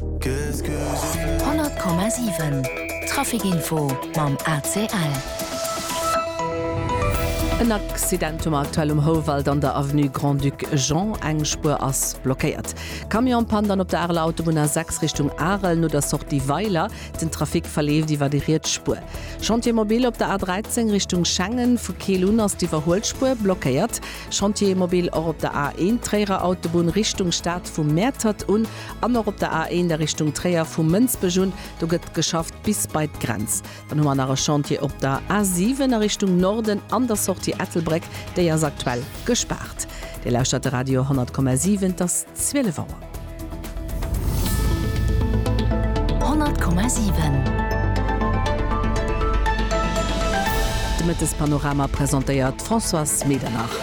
100,7 Traficinfo mam ACL. En Accident um aktuell um Houwald an der Avenue Grand-Duc Jean. Eng Spuer ass blockéiert. Camion pannt an op der Areler Autobunn A6 Richtung Arel no der Sortie Weiler. Den Trafic verleeft iwwer déi riets Spuer. Chantier mobile op der A13 Richtung Schengen. Vu Keel un ass d'Iwwerhuelspuer blockéiert. Chantier mobile och op der A1 Tréierer Autobunn Richtung Stad vu Mäertert un. An och op der A1 a Richtung Tréier, vu Mënsbech un, do gëtt geschafft bis bei d'Grenz. Dann hu mer nach e Chantier op der A7 a Richtung Norden an der Sortie Ettelbréck, déi ass aktuell gespaart. Dir lauschtert de Radio 100,7, et ass 12 Auer. 100,7. De Mëttespanorama presentéiert d'Françoise Medernach.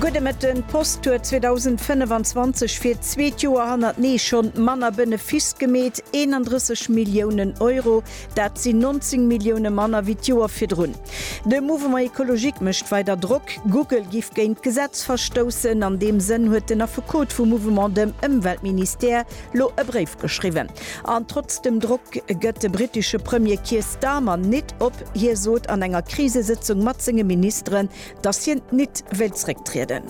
Gudde Mëtten, D'Post huet 2025 fir d'zweet Joer hannertenee schonn manner Benefiss gemeet, 31 Milliounen Euro. Dat sinn 19 Millioune manner wéi d'Joer virdrun. De Mouvement Ecologique mécht weider Drock, Google giff géint d'Gesetz verstoussen. An deem Sënn huet den Affekot vum Mouvement, dem Ëmweltministère, lo e Bréif geschriwwen. An trotz dem Drock gëtt de brittesche Premier Keir Starmer nit op. Hie sot an enger Krisesëtzung mat senge Ministeren, datt hien nit wéilt zrécktrieden.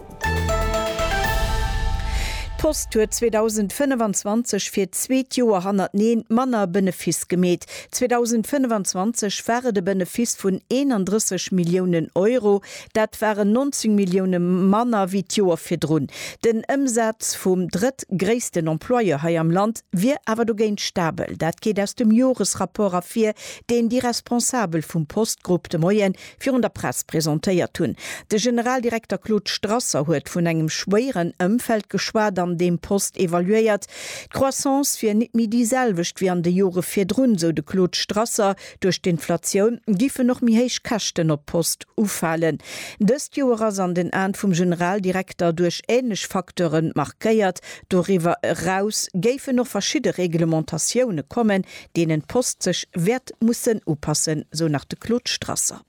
D'Post huet 2025 fir d'zweet Joer hannerteneen manner Benefiss gemeet. 2025 war et e Benefiss vun 31 Milliounen Euro. Dat waren 19 Millioune manner wéi d'Joer virdrun. Den Ëmsaz vum drëttgréissten Employeur hei am Land wier awer dogéint stabel. Dat geet aus dem Joresrapport ervir, deen déi Responsabel vum Postgrupp de Moie virun der Press presentéiert hunn. De Generaldirekter Claude Strasser huet vun engem schwéieren Ëmfeld geschwat, an deem Post evaluéiert. D'Croissance wier nit méi déi selwecht wéi an de Jore virdrun, sou de Claude Strasser. Duerch d'Inflatioun giffen och méi héich Käschten op d'Post ufalen. Dëst Joer ass an den Aen vum Generaldirekter duerch änlech Facteure markéiert. Doriwwer eraus géifen och verschidde Reglementatioune kommen, deenen d'Post sech wäert mussen upassen, sou nach de Claude Strasser.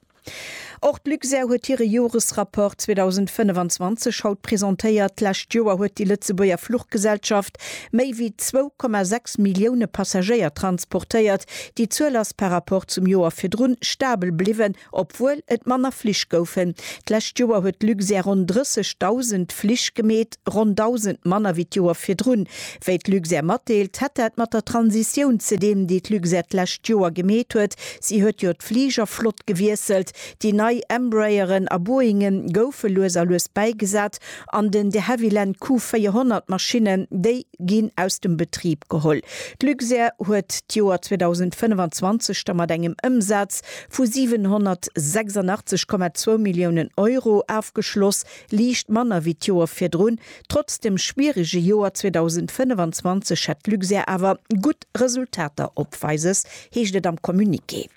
Och d'Luxair huet hire Joresrapport 2025 haut presentéiert. D'lescht Joer huet déi Lëtzebuerger Fluchgesellschaft méi wéi 2,6 Millioune Passagéier transportéiert. Déi Zuel ass par Rapport zum Joer virdrun stabel bliwwen, obwuel et manner Flich goufen. D'lescht Joer huet d'Luxair ronn 30.000 Flich gemeet. Ronn 1.000 manner wéi d'Joer virdrun. Wéi d'Luxair matdeelt, hätt dat mat der Transitioun ze dinn, déi d'Luxair d'lescht Joer gemeet huet. Si huet jo d'Fligerflott gewiesselt, déi nei Embrayeren a Boeinge goufe lues a lues bäigesat an den de Havilland Q400 Maschinnen, déi ginn aus dem Betrib geholl. D'Luxair huet d'Joer 2025 da mat engem Ëmsaz vu 786,2 Milliounen Euro ofgeschloss. Liicht manner wéi d'Joer virdrun. Trotz dem schwierege Joer 2025 hätt Luxair awer gutt Resultater opweises, heescht et am Communiqué.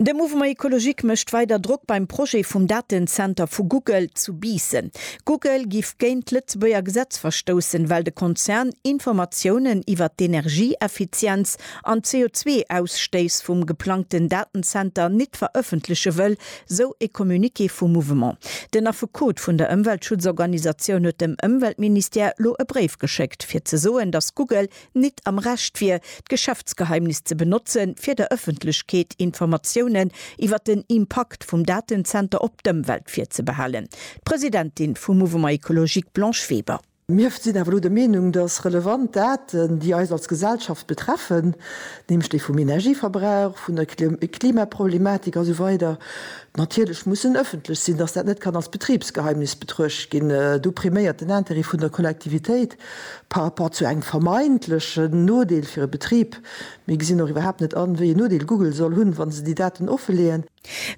De Mouvement Ecologique mécht weider Drock beim Projet vum Datenzenter vu Google zu Biissen. Google giff géint d'Lëtzebuerger Gesetz verstoussen, well de Konzern Informatiounen iwwer d'Energieeffizienz an d'CO2-Ausstéiss vum geplangten Datenzenter nit verëffentleche wëll, Sou e Communiqué vum Mouvement. Den Affekot vun der Ëmweltschutzorganisatioun huet dem Ëmweltministère lo e Bréif geschéckt, fir ze soen, datt Google nit am Recht wier, d'Geschäftsgeheimnis ze benotzen, fir der Ëffentlechkeet Informatiounen iwwer den Impakt vum Datenzenter op d'Ëmwelt virzebehalen. D'Presidentin vum Mouvement Ecologique Blanche Weber. Mir sinn awer elo der Meenung, dass relevant Daten, déi eis als Gesellschaft betreffen, nämlech déi vum Energieverbrauch, vun der Klimaproblematik a sou weider natierlech mussen ëffentlech sinn, dass dat net kann als Betribsgeheimnis betruecht ginn. Do priméiert den Intérêt vun der Kollektivitéit par rapport zu engem vermeintlechen Nodeel fir e Betrib. Mir gesinn och iwwerhaapt net an, wéi een Nodeel Google soll hunn, wa se déi Daten offeleeën.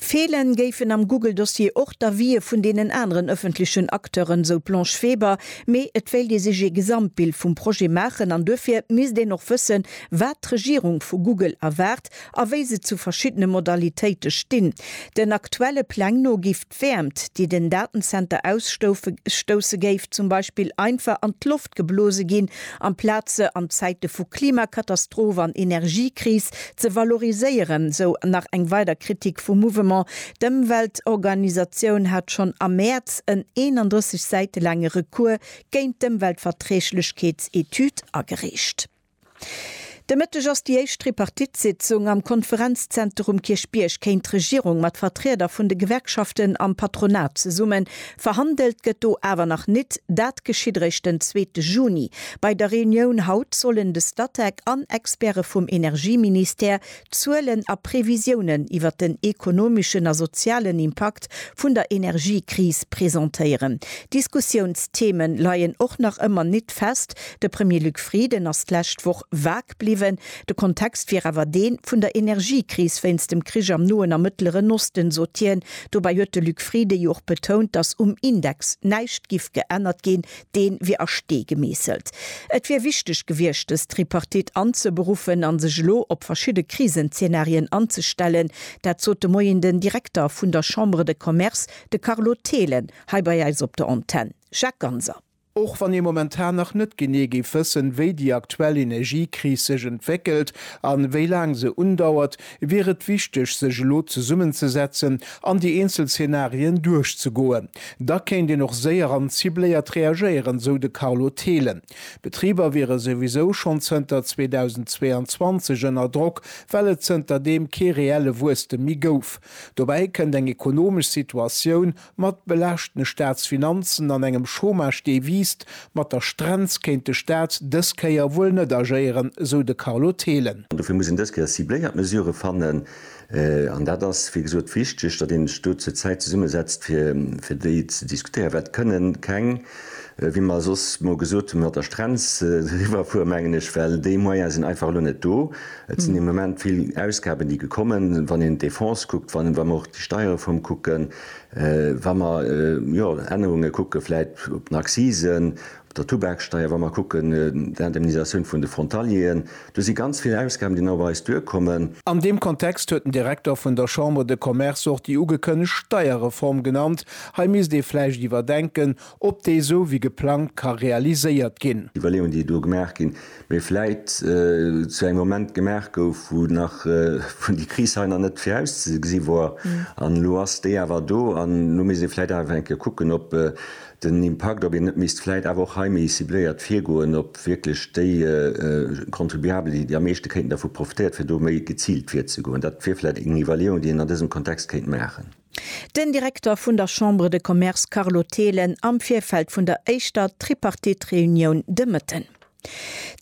Feelen géifen am Google-Dossier och d'Avië vun deenen aneren ëffentlechen Acteuren, sou d'Blanche Weber. Mee et wéilt ee sech ee Gesamtbild vum Projet maachen an duerfir misst een och wëssen, wat d'Regierung vu Google erwaart a wéi se zu verschiddene Modalitéite stinn. Den aktuelle Pläng no giff. D'Wäermt, déi den Datenzenter ausstousse géif zum Beispill einfach an d'Loft geblose ginn, amplaz se an Zäite vu Klimakatastroph an Energiekris ze valoriséieren, sou nach eng weider Kritik vum Mouvement. D'Ëmweltorganisatioun hat schonn am Mäerz en 31 Säite laange Recours géint d'Ëmweltverträglechkeetsetüd agereecht. De Mëtteg ass déi éischt Tripartite-Sitzung am Konferenzzenter um Kierchbierg. Kéint d'Regierung mat Vertrieder vun de Gewerkschaften am Patronat zesummen? Verhandelt gëtt do awer nach nit. Dat geschitt eréischt den zweete Juni. Bei der Reunioun haut sollen de Statec an Experte vum Energieministère D'Zuelen a Previsiounen iwwer den ekonomeschen a sozialen Impakt vun der Energiekris presentéieren. Diskussiounstheme leien och nach ëmmer nit fest. De Premier Luc Frieden ass d'lescht Woch vag bliwwen. De Kontext wier awer dee vun der Energiekris wéinst dem Krich am Noen a Mëttleren Osten, sot hien. Dobäi huet de Luc Frieden jo och betount, datt um Index näischt giff geännert ginn. dee wier a Stee gemeesselt. Et wier wichteg gewiescht, dës Tripartite anzeberuffen a sech elo op verschidde Krisenzeenarien anzestellen. Dat sot de Moien den Direkter vun der Chambre de Commerce, de Carlo Thelen, hei bei eis op der Antenn. Jacques Ganser. Och wann ee momentan nach net genee géif wëssen, wéi déi aktuell Energiekris sech entwéckelt a wéi laang se undauert, wier et wichteg sech elo zesummenzesetzen an déi eenzel Zenarien duerchzegoen. Da kéint een och séier an cibléiert reagéieren, sou de Carlo Thelen. D'Betriber wiere souwisou schonn zënter 2022 ënner Drock, well et zënter deem kee reelle Wuesstem méi gouf. Dobäi kënnt eng ekonomesch Situatioun, Mat belaaschtene Staatsfinanzen an engem Chômage dee wiisst mat der Strenz kéint de Staat dës Kéier wuel net agéieren, sou de Carlo Thelen. An dofir muss een dës Kéier cibléiert Mesurë fannen. An dat ass wéi gesot wichteg, datt een sech do zur Zäit zesummesetzt fir déi ze diskutéieren, well et kënnen keng, Wéi mer soss mol gesot hunn, mat der Strenz riwwerfueren, mengen ech, well déi Moyene sinn einfach elo net do. Et sinn de Moment vill Ausgaben, déi gekommen, wann een d'Defense kuckt, wa mer och déi Steierreform kucken, wa mer, jo, Ännerunge kucke vläit op den Accisen, op der Tubaksteier, wa mer kucken d'Indemnisatioun vun de Frontalieren. Do si ganz vill Ausgaben, déi nach op eis duerkommen. An deem Kontext huet den Direkter vun der Chambre de Commerce och déi ugekënnegt Steierreform genannt. Hei misst ee vläicht iwwerdenken, ob déi esou wéi geplangt ka realiséiert ginn. Iwwerleeungen, déi do gemaach ginn, mee vläicht zu engem Moment gemaach gouf, wou nach, wou déi Kris hei nach net virauszegesi wor. An elo ass déi awer do. An elo misst ee vläicht awer eng Kéier kucken, ob den Impakt, ob een net misst vläit awer och hei méi cibléiert virgoen, ob wierklech déi Contribuabel, déi am meeschte kéinten dervu profitéiert, fir do méi geziilt virzegoen. Dat wier vläicht eng Iwwerleeung, déi een an dësem Kontext kéint maachen. Den Direkter vun der Chambre de Commerce Carlo Thelen am Virfeld vun der éischter Tripartite-Reunioun de Mëtten.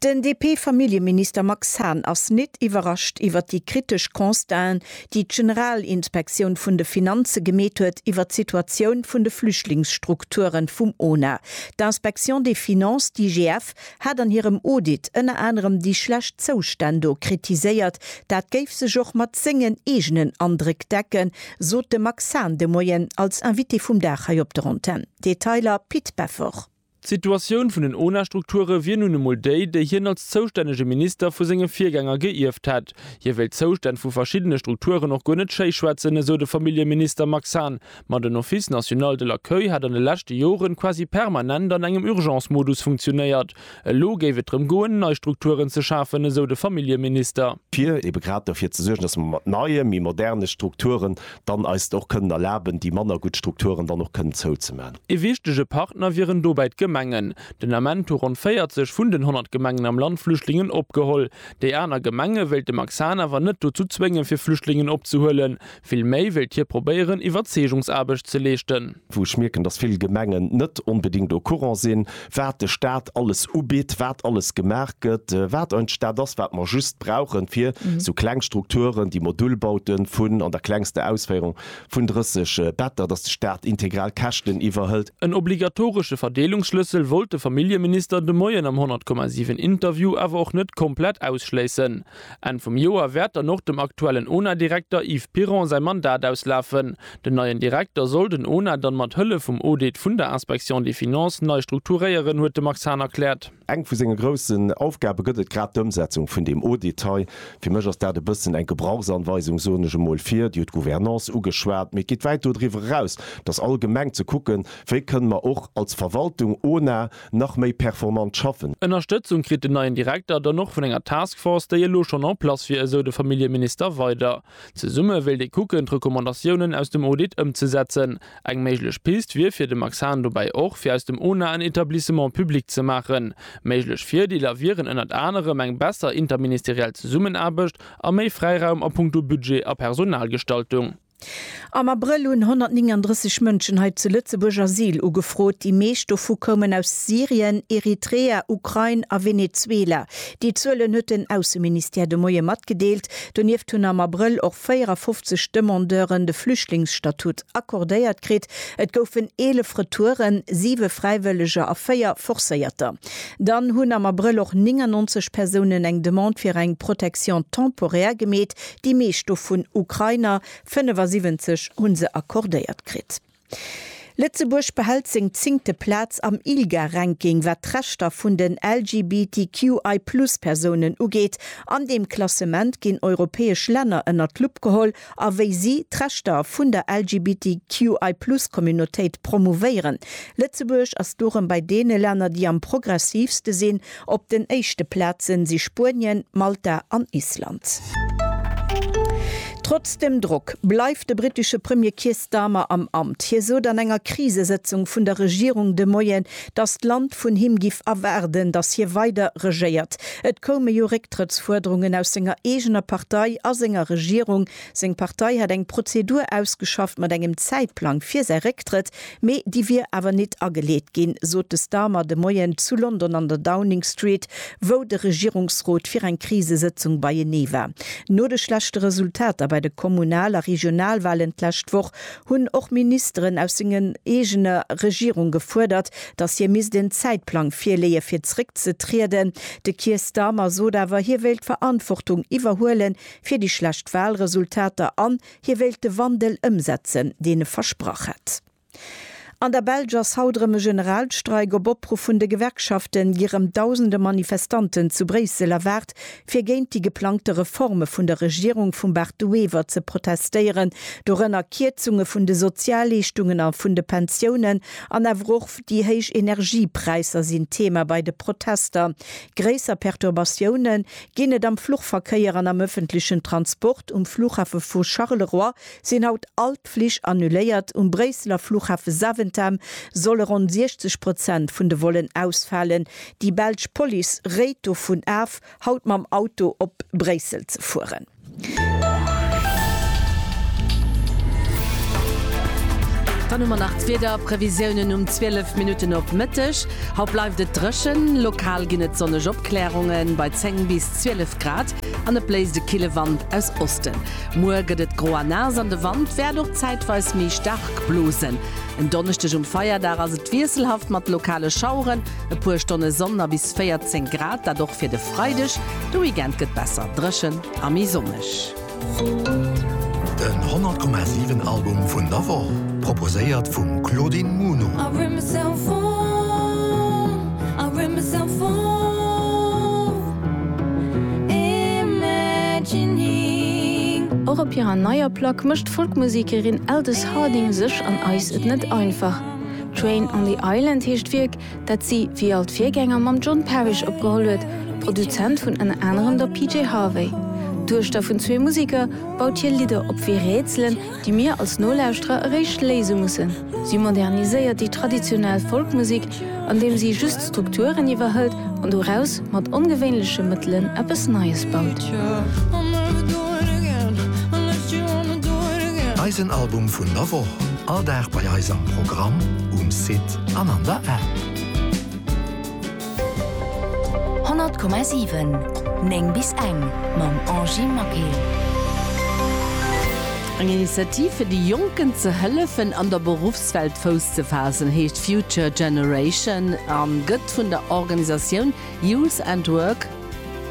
Den DP-Familljeminister Max Hahn ass nit iwwerrascht iwwert déi kritesch Constaten, déi d'General-inspektioun vun de Finanze gemeet huet iwwert d'Situatioun vun de Flüchtlingsstrukturen vum ona. D'Inspection des Finances, d'IGF, hat an hirem Audit ënner anerem déi schlecht Zoustänn do kritiséiert. Dat géif sech och mat sengen eegenen Andréck decken, sot de Max Hahn de Moien als Invité vum Dag hei op der Antenn. Detailer, Pit Beffort. D'Situatioun vun den ONA-Strukture wier nun emol déi, déi hien als zoustännege Minister vu senge Virgänger geierft hätt. Hie wéilt d'Zoustänn vu verschiddene Strukturen och guer net schéi schwätzen, esou de Familljeminister Max Hahn. Ma den Office national de l'accueil hätt an de leschte Jore quasi permanent an engem Urgence-Modus funktionéiert. Elo géif et drëm goen, nei Strukturen ze schafen, esou de Familljeminister. Fir ebe grad derfir ze suergen, datt mer mat neie, méi moderne Strukturen dann eis et och kënnen erlaben, déi manner gutt Strukturen dann och kënnen zouzemaachen. Ee wichtege Partner wieren dobäi d'Gemengen. Den Ament hu ronn 40 vun den 100 Gemengen am Land Flüchtlingen opgeholl. Déi aner Gemenge wéilt de Max Hahn awer net dozou zwéngen, fir Flüchtlingen opzehuelen. Vill méi wéilt hie probéieren, Iwwerzeegungsaarbecht ze leeschten. Wou ech mierken, datt vill Gemengen net onbedéngt au courant sinn, wat de Staat alles ubitt, wat alles gemaach gëtt, wat ein Staat ass, wat mer just brauchen, fir esou kleng Strukturen, déi Modulbaute vun an der klengster Ausféierung, Vun 30 Better, datt de Staat integral Käschten iwwerhëlt. En obligatoresche Verdeelungsschlëssel wollt de Familljeminister de Moien am 100,7 Interview awer och net komplett ausschléissen. Enn vum Joer wäert dann och dem aktuellen ONA-Direkter Yves Piron säi Mandat auslafen. Den neien Direkter soll den ONA dann mat Hëllef vum Audit vun der Inspection des Finances nei strukturéieren, huet de Max Hahn erkläert. Eng vu senge groussen Aufgabe gëtt et grad d'Ëmsetzung vun deem Audit hei. Fir mech ass dat e bëssen eng Gebrauchsanweisung, soen ech emol. Fir, Dir hutt d'Gouvernance ugeschwat, mee et geet wäit dodriwwer eraus, dass all Gemeng ze kucken, wéi kënne mer och als Verwaltung, ONA, nach méi performant schaffen. Ënnerstëtzung kritt den neien Direkter dann och vun enger Task Force, déi elo schonn en place wier, esou de Familljeminister weider. Zesumme wéilt ee kucken, d'Recommandatiounen aus dem Audit ëmzesetzen. Eng méiglech Pist wier fir de Max Hahn dobäi och, fir aus dem ONA en Etablissement public ze maachen. Méiglech Virdeeler wieren ënnert anerem eng besser interministeriell Zesummenaarbecht a méi Fräiraum a puncto Budget a Personalgestaltung. Am Abrëll hunn 139 Mënschen hei zu Lëtzebuerg Asyl ugefrot. Déi meescht dovu koumen aus Syrien, Eritrea, Ukrain a Venezuela. Déi Zuelen huet den Ausseministère de Moie matgedeelt. Donieft hunn am Abrëll och 54 Demandeuren de Flüchtlingsstatut accordéiert kritt. Et goufen 11 Retouren, siwe Fräiwëlleger a véier Forcéierter. Dann hunn am Abrëll och 99 Persounen eng Demande fir eng Protection temporaire gemeet, déi meescht dovun Ukrainer. 75 hu se accordéiert kritt. Lëtzebuerg behält seng zéngte Plaz am ILGA-Ranking, wat d'Rechter vun den LGBTQI-Plus-Persounen ugeet. An deem Klassement ginn europäesch Länner ënnert d'Lupp geholl a wéi si d'Rechter vun der LGBTQI-Plus-Communautéit promouvéieren. Lëtzebuerg ass dorëm bei deene Länner, déi am progressiivste sinn. Op den éischte Plazen si Spuenien, Malta an Island. Trotz dem Drock bleift de brittesche Premier Keir Starmer am Amt. Hie sot an enger Krisesëtzung vun der Regierung de Moien, datt d'Land vun him giff erwaarden, datt hie weider regéiert. Et koume jo Récktrëttsfuerderungen aus senger eegener Partei a senger Regierung. Seng Partei hätt eng Prozedur ausgeschafft mat engem Zäitplang fir säi Récktrëtt, mee déi wier awer nit ageleet ginn, sot de Starmer de Moien zu London an der Downing Street, wou de Regierungsrot fir eng Krisesëtzung beienee war. No de schlechte Resultater bei de Kommunal a Regionalwalen d'lescht Woch hunn och Ministeren aus senger eegener Regierung gefuerdert, datt hie misst en Zäitplang virleeë fir zréckzetrieden. De Keir Starmer sot awer, hie wéilt d'Verantwortung iwwerhuelen, fir déi schlecht Wahlresultater an hie wéilt de Wandel ëmsetzen, deen e versprach hätt. An der Belsch ass haut erëm e Generalstreik. Op Opruff vun de Gewerkschafte gi rëm dausende Manifestanten zu Bréissel erwaart, fir géint déi geplangte Reforme vun der Regierung vum Bart De Wever ze protestéieren, dorënner Kierzunge vun de Sozialleeschtungen a vun de Pensiounen. An awer och déi héich Energiepräisser sinn Thema bei de Protester. Gréisser Perturbatioune Ginn et am Fluchverkéier an am ëffentlechen Transport. Um Flughafe vu Charleroi sinn haut all d'Flich annuléiert. Um Bréisseler Flughafe Zaventem solle ronn 60 Prozent vun de Vollen ausfalen. Déi belsch Police réit dovun af, haut mam Auto op Bréissel ze fueren. Dann hu mer nach d'Wiederprevisiounen um 12 Minutten op Mëtteg. Haut bleift et dréchen, lokal ginn et sonneg Opklärungen bei 10 bis 12 Grad an et bléist e kille Wand aus Osten. Muer gëtt et gro a naass an de Wand wäert och zäitweis méi staark blosen. En Donneschdeg um Feierdag ass et wiesselhaft mat lokale Schaueren. E puer Stonne Sonn a bis 14 Grad, dat och fir de Freideg. De Weekend gëtt besser dréchen a méi sonneg. Den 100,7 Album vun der Woch, proposéiert vum Claudine Muno. Och op hirer neier Plack mécht d'Folkmusekerin Aldous Harding sech an eis et net einfach. Train on the Island heescht d'Wierk, dat si, wéi all d'Virgänger, mam John Parish opgeholl huet. Produzent vun ënner anerem der PJ Harvey, Duechter vun zwee Museker, baut hie Lidder op wéi Rätselen, déi mir als Nolauschterer eréischt léise mussen. Si moderniséiert déi traditionell Folkmusek, andeem si just Strukturen iwwerhëlt an doraus mat ongewéinleche Mëttelen eppes Neies baut. Eisen Album vun der Woch, all Dag bei eis am Programm, um Site an an der App. 100,7 9 bis eng mam Angy Maquet. Eng Initiativ fir de Jonken ze hëllefen an der Beruffswelt. D'Welt Fouss ze faassen heescht Future Generation a gëtt vun der Organisatioun Youth and Work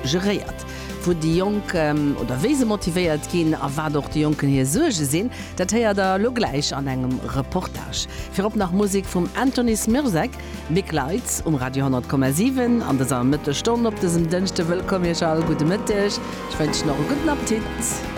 geréiert. Wou déi Jonk oder wéi se motivéiert ginn a wat och de Jonken hir Suerge sinn, dat héiert der elo gläich an engem Reportage. Virop nach Musek vum Anthony Smirzek. Big Lights um Radio 100,7 an dëser Mëttesstonn op dësem Dënschde. Wëllkomm Iech all, gudde Mëtteg, ech wënschen och e gudden Appetit.